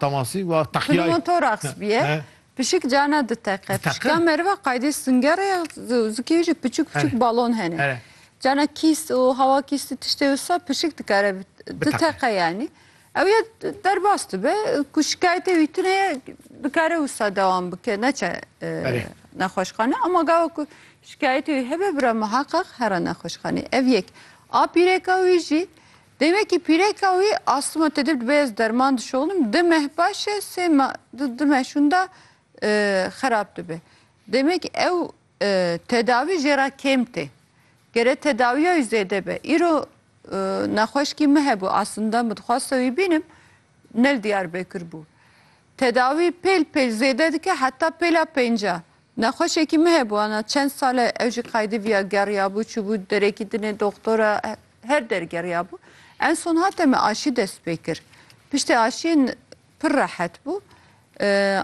Temasî wa teqîyayê. Pil û tor axsbîye, pişik cana diteqe. Pişika meriva qaydê singere ya zikê jî piçûk piçûk balon hene. Cana kîst û hewa kîst û tiştê wisa pişik dikare diteqe yanî. Ew ya derbas dibe ku şikayetê wî tune ye dikare wisa dewam bike neçe nexweşxane. Ema gava ku şikayetê wî hebe bira miheqeq here nexweşxanê. Ev yek. A pîrêka wî jî Demekî pîreka wî astma tedib dibe ez derman dişoxnim di meh baş e sê meh di di meh şûnda xerab dibe. Demekî ew tedawî jê ra kêm tê. Gere tedawiya wî zêde be. Îro nexweşkî min hebû asinda min dixwaste wî bînim nel Diyarbekir bû. Tedawî pêl pêl zêde dike heta pêla pênca. Nexweşekî min hebû ana çend sal e ew jî Qaydiviya geriyabû, çûbû derekî dinê doxtora her der geriyabû. En son hate min aşî dest pê kir. Piştê aşiyê pir rehet bû.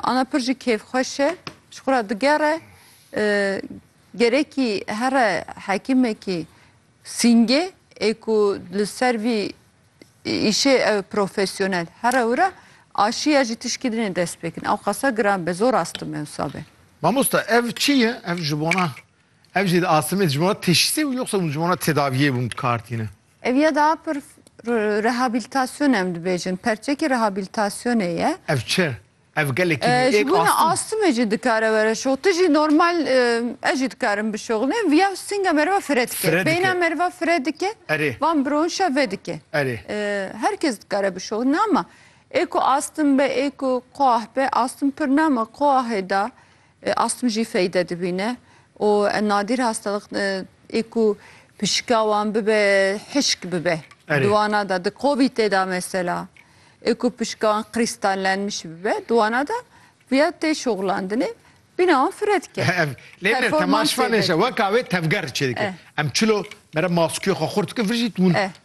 Ana pir jî kêfxweş e. Ji xwe re digere. Gerekî here hekîmekî sîngê ê ku li ser vî îşê ew profesyonel here wira aşiya jî tişkî dinê dest pê kirin. Ew qasa giran be zor astim me wisa be. Mamosta ev çi ye? Ev ji bona ev jî di astimê ji bona teşhîsê û yoxsa hûn ji bona tedaviyê bûn dikar tîne? Ev ya da pir rehabilitasyonê em dibêjin. Perçekî rehabilitasyonê ye. Ev çi? Ev gelekî me Ji êk bo ne astim. astime jî dikare were şox. Tu jî normal eh, ez jî dikarim bişoxnim. Viya stinga meriva fire dike. Fire dike. Beyna meriva fire dike. Erê. Van bironşa ve dike. Erê. Eh, Her kes dikare bişoxne ama ê ku astim be, ê ku quah be, astim pir nama quahê da Astm jî feyde dibîne û nadîr hastalık ê ku pişika wan bibe hişk bibe. Di wana de di COVIDê de mesela ê ku pişika wan qirîstallenmiş bibe di wana de viya tê şoxlandinê bîna wan fire dike. Ev lê ne temaşvanê şe weka wê tevger çê dike. Em çilo mere maskîya xwe xurt dikin vir jî tûn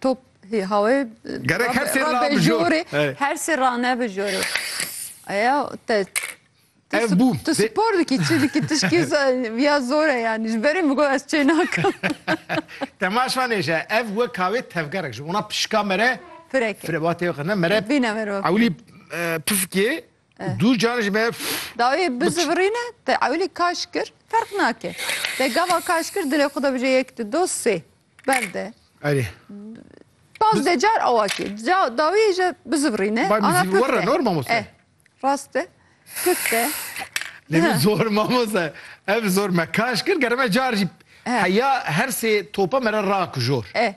Top hê hawê Gerek her sê ra bi jor. Her sê ra ne bi jor. Aya te Ev bû. Tu spor dikî çi dikî tişkî ya zor e yanî ji berê min got ez çê nakim. Temaş vanê je ev wek hawê tevgerek ji wana pişka me re Firek e. Ba tê qirne me re Vîne me re. Ewlî pifikê dû can ji me Dawê bizivirîne te ewlî kaş kir ferq nake. Te gava kaş kir dilê xwe de bije yek du do sê. Bende. Erê. Baz de car awaki. Ca dawi je bizivrine. Bay müziği var ya normal mı sen? Raste. Kıtte. Ne mi zor mamoza. Ev zor me kaş kır germe car jip. Heya her se topa mera ra kujor. E.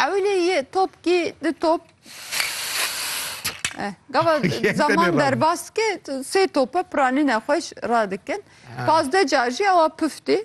Evli ye top ki de top. E. Gava zaman derbas ki se topa pranine hoş radikin. Pazde car ji awa püfti.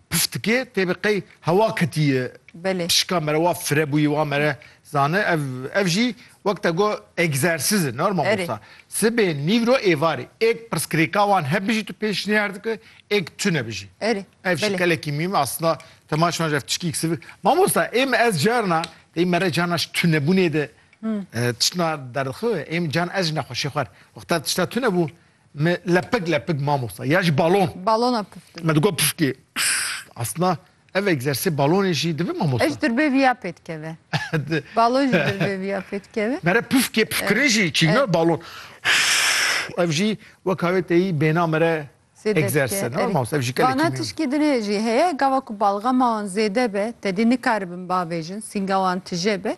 Piftikê tê bi qey hewa ketiye. Belê. Pişika mere wa fire bûyî wa mere zane ev ev jî wek te got egzersiz e normal Erê. wisa. Sibê nîvro êvarê êk pirsgirêka wan hebijî tu pêşniyar dike êk tu nebijî. Erê. Ev jî Belê. kelekî mîm aslında tema şima jî ev tişkî kisivir. Mamosta ê min ez carna ê mere carna ji tunebûnê de e, tiştna derdixewe ê min carna ez jî nexweşê xwer wexta tişta tunebû Me lepik lepik mamosta ya ji balon. Balona puf Me digot pufkê. Aslında ev egzersê balonê jî divê mamosta. Ez dirbê viya pê dikeve. balon jî dirbê viya pê dikeve. Mere pufkê pufkirin jî çîna balon. Ev jî weka wê teyî bêna mere egzerse. Ne mamosta ev jî kelekî. Bana tişkî dinê jî heye gava ku balgama wan zêde be tedî nikaribin bavêjin sînga wan tije be.